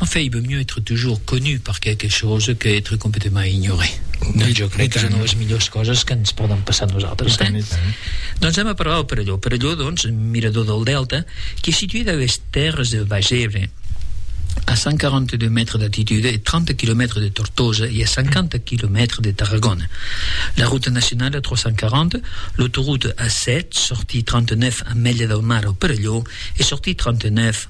En fait, il vaut mieux être toujours connu per quelque chose que être complètement ignoré. Doncs jo crec que és una de les millors coses que ens poden passar a nosaltres. Eh? Doncs anem a parlar del Perelló. Perelló, doncs, mirador del delta, que es situé dans les terres del Baix Ebre, a 142 mètres d'altitud e 30 quilomètres de Tortosa e a 50 quilomètres de Tarragona. La ruta nacionala 340, l'autoroute A7, sortie 39 a Mèlia del Mar au Perelló e sortie 39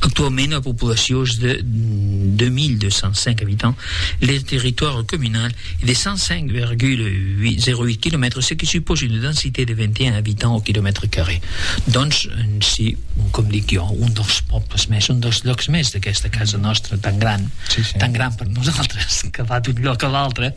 Actuaument, la populacion es de 2.205 abitants, le territòri comunal es de 105,08 quilomètres, ce que supòsa una densité de 21 abitants au quilomètre carré. Doncs, si, com dic jo, un dels pòbles mès, un dels lòcs mès d'aquesta casa nostra tan gran, tan gran per nosaltres, que va d'un lòc a l'altre,